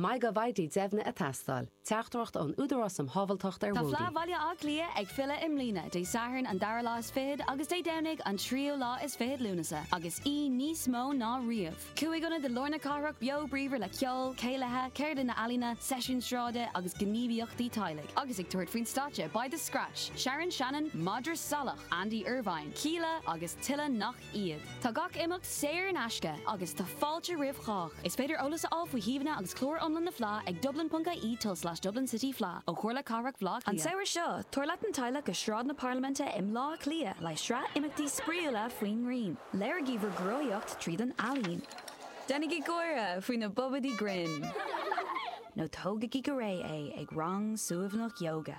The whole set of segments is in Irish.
Mai go bhfaighidh deimhniú ag teastáil. Teachtaireacht ón Údarás um Shábháilteacht ar Bhóithre. Tá Fleadh Bhaile Átha Cliath ag filleadh i mbliana, Dé Sathairn an dara lá is fichead agus Dé Domhnaigh an tríú lá is fichead Lúnasa, agus í níos mó ná riamh. Cúig ionad i lár na cathrach beo bríomhar le ceol, céilithe, ceardlanna ealaíne, seisiúin sráide agus gníomhaíochtaí teaghlaigh. Agus ag tabhairt faoin stáitse beidh The Scratch, Sharon Shannon, Madra Salach, Andy Irvine, Kíla agus tuilleadh nach iad. Tá gach imeacht saor in aisce agus tá fáilte roimh chách. Is féidir eolas a fháil faoi shuíomhanna agus clár iomlán na Fleá ag dublin.ie tulslais dublincityfleadh ó Chomhairle Cathrach Bhleá Cliath. An samhradh seo, tabhair leat an teaghlach go Sráid na Parlaiminte i mBleá Cliath le sraith imeachtaí spraíúla faoin ngrian. Léirigí bhur gcruthaitheacht tríd an ealaín. Déanaigí gáire faoi na bobaidí grinn. Nó tógaigí go réidh é ag rang suaimhneach ióga.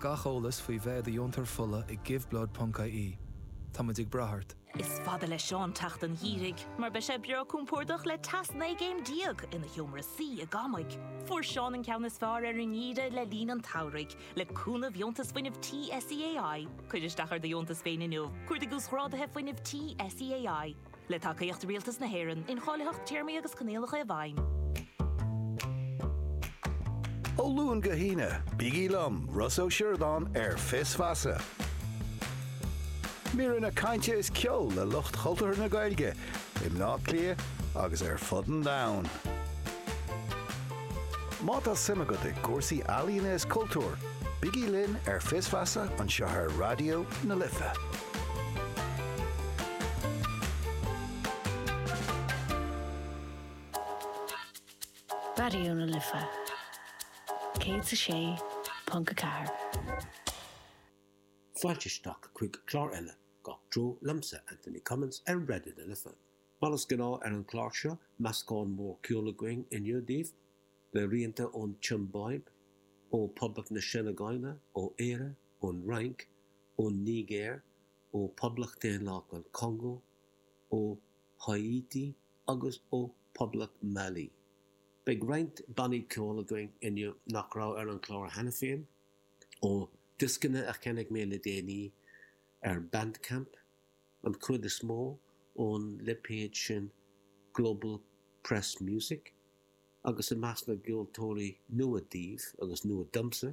Gach eolas faoi bheith i do dheontóir fola ag giveblood.ie. Táimid ag brath ort! Is fada le Seán teacht an gheimhridh mar beidh sé breá compordach le teas 19 gcéim ina sheomra suí i gCamaigh. Fuair Seán an ceann is fearr ar an ngeimhreadh le linn an tsamhraidh le cúnamh dheontas fuinnimh tí SEAI. Cuir isteach ar do dheontas féin inniu. Cuardaigh uasghráduithe fuinnimh tí SEAI. Le tacaíocht Rialtas na hÉireann, incháilitheacht téarmaí agus coinníollacha i bhfeidhm. Ó Luan go hAoine, bígí liom, Rossa Ó Sioradáin, ar Fios Feasa. Míreanna cainte is ceol le lucht chultúrtha na Gaeilge i mBleá Cliath agus ar fud an domhain. Má tá suim agat i gcúrsaí ealaíne is cultúir, bígí linn ar Fios Feasa anseo ar Raidió na Life. Raidió na Life 106.4. Fáilte isteach chuig clár eile Gach Treo liomsa, Anthony Cummins ar Raidió na Life. Mar is gnáth ar an chlár seo, meascán mór ceol againn inniu daoibh, le rianta ón tSiombáib, ó Phoblacht na Seineagáile, ó Éire, ón Fhrainc, ón Nigéir, ó Poblacht Daonlathach an Congó, ó Háítí agus ó Poblacht Mali. Beidh roinnt bannaí ceoil againn inniu nach raibh ar an chlár cheana féin, ó dioscanna a cheannaigh mé le déanaí ar Bandcamp, an chuid is mó ón lipéad sin Global Press Music, agus i measc na gceoltóirí nua daoibh, agus nua domsa,